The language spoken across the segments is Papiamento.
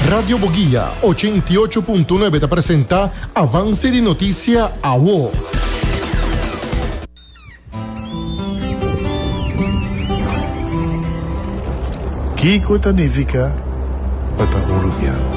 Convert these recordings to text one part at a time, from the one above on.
Radio Boguia ochenta i ocho punto nuebe ta presenta Avance di Noticia Awo. Kiko ta nifica pa ta uruguiano?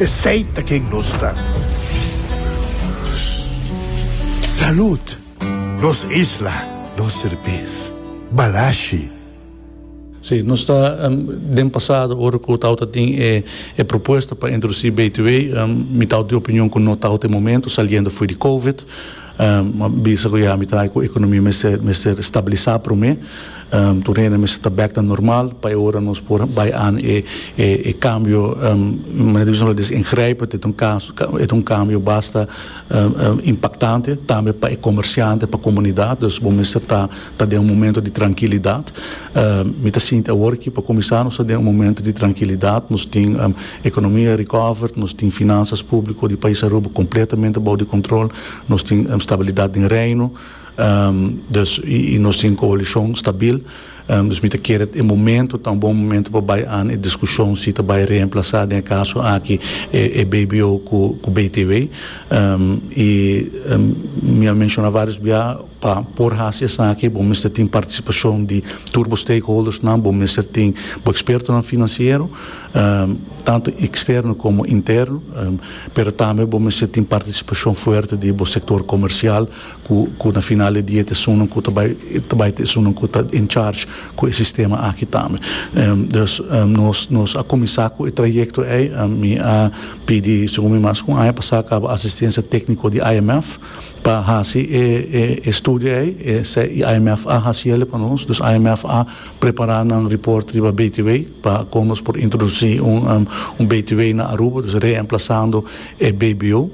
Esey ta ken nos ta. Salud! Nos isla, nos serbes. Balashi. Sí, nos ta den pasado ora cu tao ta tin e propuesta pa introduci BTW, mi tao di opinion cu no tao ta e momento saliendo fo'i di Covid. Bo bisa ku ya mi ta bay ku ekonomia mester mester stabilisa prome. Tur hende mester ta bek ta normal pa e ora nos por bay an e e e kambio manera di bisanan des ingrijpend. E ta un kaso e ta un kambio basta impaktante tambe pa e komersiante pa komunidat. Dus bo mester ta. Ta den un momento di trankilidat. Mi ta sinti awor aki pa kuminsá nos ta den un momento di trankilidat. Nos tin ekonomia recovered, nos tin finansas públiko di pais Aruba kompletamente bou di kontrol, nos tin stabilidat den reino, dus i nos tin koalishon stabil. Dus mi ta kere e momento ta un bon momento pa bai an e diskushon si ta bai reemplasá den e kaso aki e BBO ku BTW. I mi a menshoná vários biaha. Pa por hasi esaki bo mester tin partisipashon di tur bo stakeholdersnan, bo mester tin bo ekspertonan finansiero, tantu eksterno komo interno, pero tambe bo mester tin partisipashon fuerte di bo sektor komersial ku na final di dia ta esunnan ku ta bai ta bai ta esunnan ku ta en charge ku e sistema aki tambe. Dus nos nos a kuminsá ku e trayekto ei, mi a pidi segun mi mas ku un aña pasá kaba asistensia tékniko di IMF. Pa hasi e studio ei, esei IMF a hasi el pa nos, dus IMF a prepara nan report riba BTW pa kon nos por introdusi un BTW na Aruba, dus reemplasando e BBO,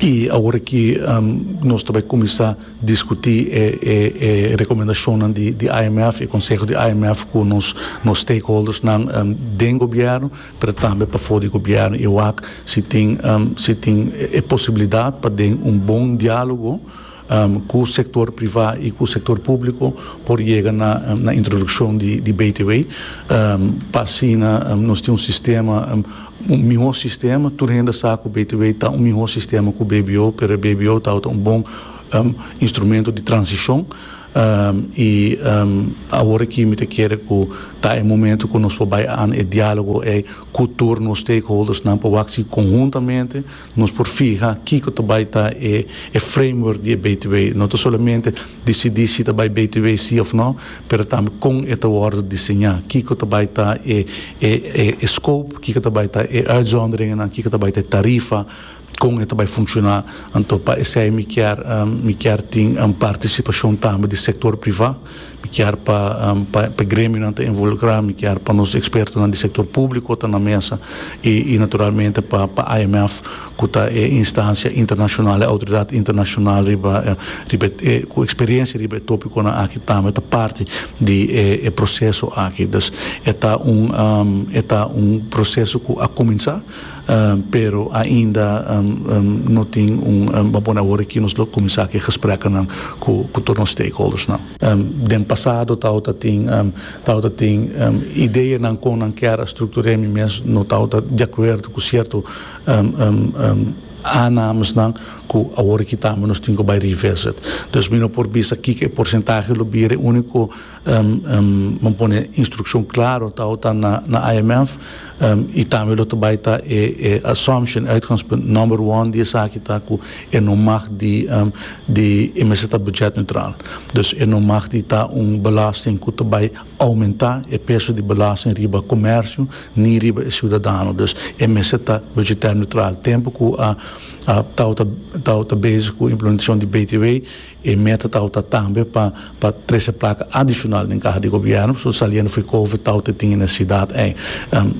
i awor aki nos ta bai kuminsá diskutí e rekomendashonnan di IMF, e konseho di IMF ku nos stakeholdersnan den gobièrnu. pero tambe pafó di gobièrnu i wak si tin si tin e posibilidat pa den un bon diálogo ku sektor privá i ku sektor públiko por yega na na introdukshon di di BTW pa asina nos tin un sistema un mihó sistema tur hende sa ku BTW ta un mihó sistema ku BBO pero e BBO tabata un bon instrumento di transishon. I awor aki mi ta kere ku ta e momento ku nos por bai an e dialogo ei ku tur nos stakeholdersnan pa wak si konhuntamente nos por fiha kiko ta bai ta e framework di e btw. No ta solamente disidí si ta bai btw sí òf nò, pero tambe kon e ta wòrdu diseñá, kiko ta bai ta e scope, kiko ta bai ta e uitzonderingennan, kiko ta bai ta e tarifa, Kon e ta bai funciona? Anto pa esei mi kier mi kier tin participacion tambe di sector priva, mi kier pa pa pa e gremionan ta involucra, mi kier pa nos expertonan di sector publico ta na mesa y y naturalmente pa pa IMF cu ta e instancia internacional e autoridad internacional riba riba e cu experiencia riba e topiconan aki tambe ta parti di e e proceso aki. Dus e ta un e ta un proceso cu a cuminsa. Pero ainda no tin un bo a pone awor aki nos lo cuminsa ki gespreknan cu tur nos stakeholdersnan. Den pasado tabata tin tabata tin ideanan con nan kier a structure mi mes no tabata di acuerdo cu cierto aanamesnan cu awor aki tambe nos tin cu bay revisit. Dus mi no por bisa kiko e porcentahe lo bira e unico Bo pone instrukshon klaro ta ou ta na IMF i tambe lo ta bai ta e assumption, uitgangspunt, nòmber one di esaki ta ku e no mag di di e mester ta buchèt neutraal. Dus e no mag di ta un belasting ku ta bai oumentá e peso di belasting riba komèrsio ni riba e siudadano. Dus e mester ta buchitèr neutraal. Tempu ku ta ou ta bezig ku implementashon di BTW E meta tawta tambe pa pa trese plaka adishonal den kaha di gobièrnu, pasobra saliendo for di kovid tawta e tin e nesesidat ei.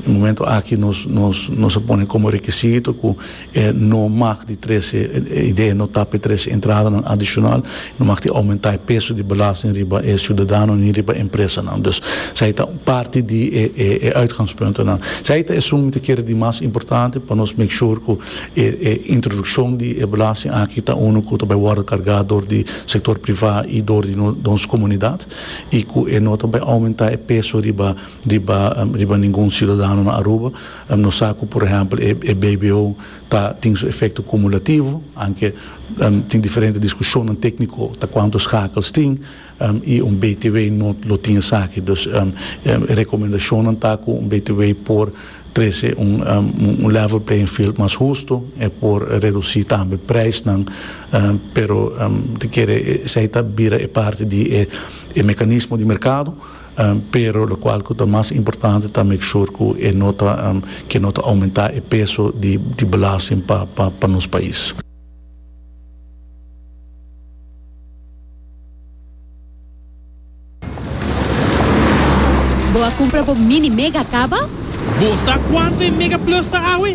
Momento aki nos nos nos a pone komo rekisito ku e no mag di trese, e idea no ta pa e trese entradanan adishonal, no mag tin oumentá e peso di belasting riba e siudadanonan ni riba e empresanan. Dus esei ta un parti di e e e uitgangspuntonan. Esei ta esun mi ta kere di mas importante pa nos make sure ku. E e introduccion di e belasting aki ta uno cu ta bay wordo carga door di sector priva y door di nos comunidad y cu e no ta bay aumenta e peso riba riba riba ningun ciudadano na Aruba. Nos sa cu por ehempel e e BBO ta tin su efecto cumulativo anke tin diferente discusionnan tecnico ta cuanto schakels tin. y un btw no lo tin esaki. Dus e recomendashonnan ta cu un btw por trece un level playing field mas husto, e por reduci tambe prijsnan, pero ta kere esey ta bira e parti di e mecanismo di mercado, pero locual cu ta mas importante ta make sure cu e no ta, cu no ta aumenta e peso di belasting pa nos pais. Bo a cumpra bo mini mega caba? Bo sa cuanto e Mega Plus ta awe?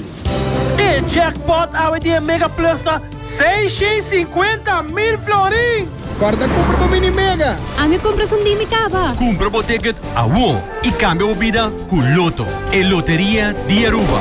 E jackpot awe di e Mega Plus ta seiscientos cincuenta mil florin! Corda cumpra bo mini mega! Ami a cumpra esun di mi caba! Cumpra bo ticket awor y cambia bo bida cu Lotto, e loteria di Aruba!